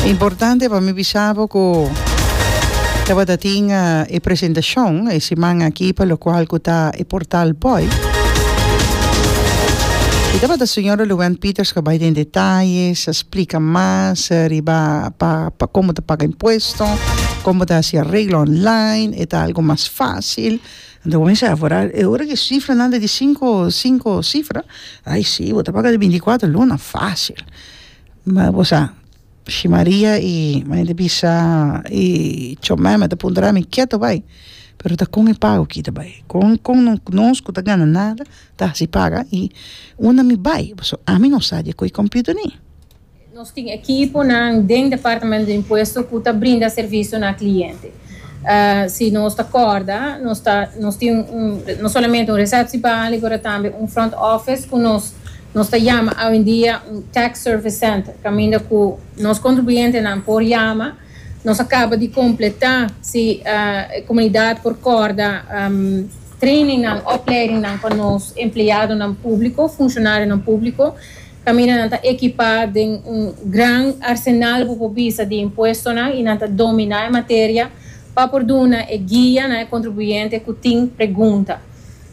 Importante pa mi bisa bo cu tabata tin e presentacion e siman aki pa locual cu ta e Portal Boy. Y tabata Señora Luwend Peters cu a bay den detalles, a splica mas riba pa pa como ta paga impuesto, como ta haci arreglo online, e ta algo mas facil. Nan ta cuminsa evaporar. E ora cu e cifranan ta di cinco, cinco cifra, ay si, bo ta paga di binticuatro luna facil. Ma bo sa, si Maria y mainta bisa y Chomeme ta puntra mi ke ta bay, pero ta con e pago ki ta bay. Con, con no, nos cu ta gana nada ta hasi paga y una mi bay, pasobra ami no sa di e coy computer ni. Nos tin ekiponan den Departamento di Impuesto ku ta brinda servisio na kliente. Si nos ta kòrda, nos ta nos tin un no solamente un resepsibali pero tambe un front office ku nos nos ta yama awendia un tax service center kaminda ku nos kontribuyentenan por yama nos a kaba di kompletá si e komunidat por kòrda treiningnan, opleidingnan pa nos empleadonan públiko, funshonarionan públiko. Caminanan ta equipá den un gran arsenal bo por bisa di impuestonan y nan ta dominá e materia pa por duna e guia na e contribuyente cu tin pregunta.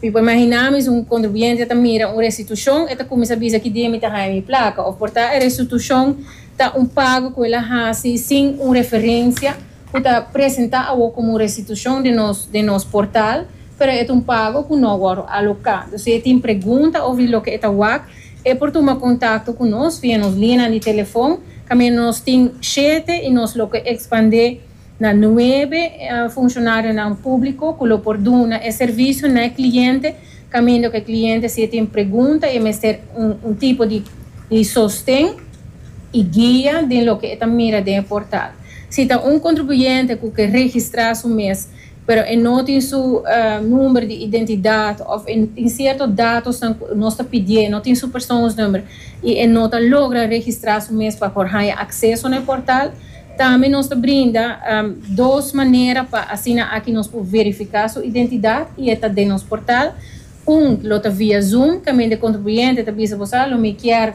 Mi por imaginá mi si un contribuyente ta mira un restitucion e ta cuminsa bisa ki dia mi ta haña mi placa of por ta e restitucion ta un pago cu el a haci sin un referencia ku ta presentá awor komo un restitushon den nos den nos portal, pero e ta un pago ku no wòrdu aloká. Dor si e tin pregunta òf di loke e ta wak, e por tuma kontakto ku nos via nos linianan di telefòn, kaminda nos tin shete i nos lo ke ekspandé na nuebe funshonario nan públiko ku lo por duna e servisio na e kliente Kamindo ku e kliente si e tin pregunta i e mester un tipo di sosten i guia den loke e ta mira den e portal. Si ta un kontribuyente ku ke registrá su mes pero e no tin su number di identidat òf e tin sierto datosnan ku nos ta pidié, no tin su persoonsnummer i e no ta logra registrá su mes pa por haña akseso na e portal, Tambe nos ta brinda dos manera pa asina aki nos por verifica su identidad y e ta den nos portal. Un lo ta via Zoom, caminda e contribuyente ta bisa bo sa lo mi kier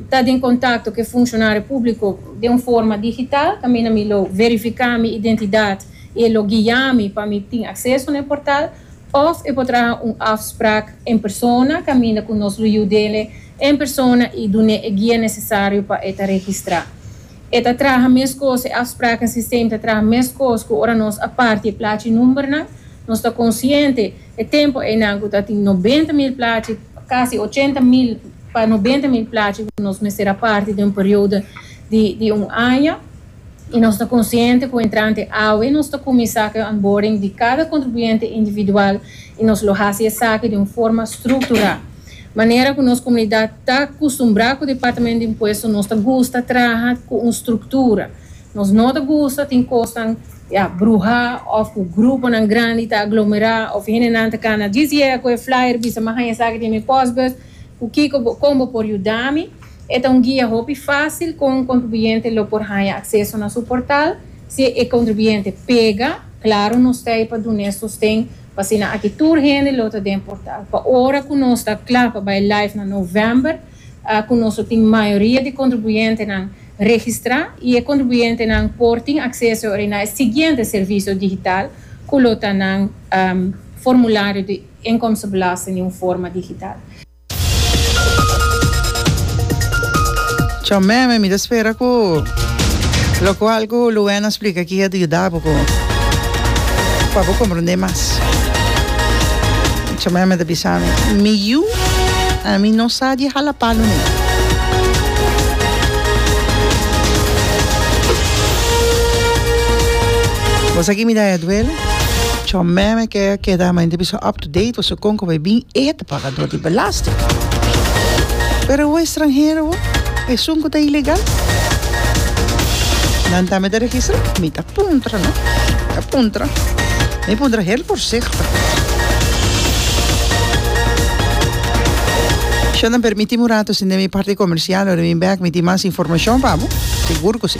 ta den contacto cu e funcionario publico den un forma digital, caminda mi lo verifica mi identidad y e lo guia mi pa mi tin acceso na e portal. Of e por traha un afspraak en persona, caminda cu nos lo yudele en persona y dun'e e guia necesario pa e ta registra. E ta traha meskos, e afspraken sistem ta traha meskos ku ora nos a parti e plachi numbernan. Nos ta konsiente e tempu einan ku ta tin nobenta mil plachi, kasi ochenta mil pa nobenta mil plachi ku nos mester a parti den un periodo di di un aña. I nos ta konsiente ku entrante awe nos ta kuminsá ku e onboarding di kada kontribuyente individual i nos lo hasi esaki den un forma strukturá. Manera ku nos komunidat ta kustumbrá ku Departamento di Impuesto nos ta gusta traha ku un struktura. Nos no ta gusta tin kosnan ya bruhá òf ku gruponan grandi ta aglomerá òf hendenan ta kana djis yega ku e flyer bisa mi haña esaki den mi pòsbus ku kiko bo kon bo por yuda mi. E ta un guia hopi fásil kon un kontribuyente lo por haña akseso na su portal. Si e kontribuyente pega, klaru nos ta ei pa dun'é sosten. Asina aki tur hende lo ta den portal. Pa ora cu nos ta cla pa bay live na november, cu nos lo tin mayoria di contribuyentenan registra y e contribuyentenan por tin acceso awor na e siguiente servicio digital cu lo ta nan formulario di inkomstenbelasting di un forma digital. Tjo meme mi ta spera cu locual cu Luena splica aki a ta yuda bo cu pa bo comprende mas. Tjo meme ta bisa mi, Mi yu, ami no sa di hala palu ne. Bo sa ki mi daya duele? Tjo meme ke a keda ma mi ta bisa up to date, pasobra con cu bo a bin e. Pagadó di belasting. Pero awor e stranhero bo, esun ku ta ilegal, nan tambe ta registrá? Mi ta puntra no, mi ta puntra. Mi puntra hel voorzichtig. Sho nan permití mi un rato sin den mi parti komersial, ora mi bèk mi tin mas informashon pa bo? Sigur ku si.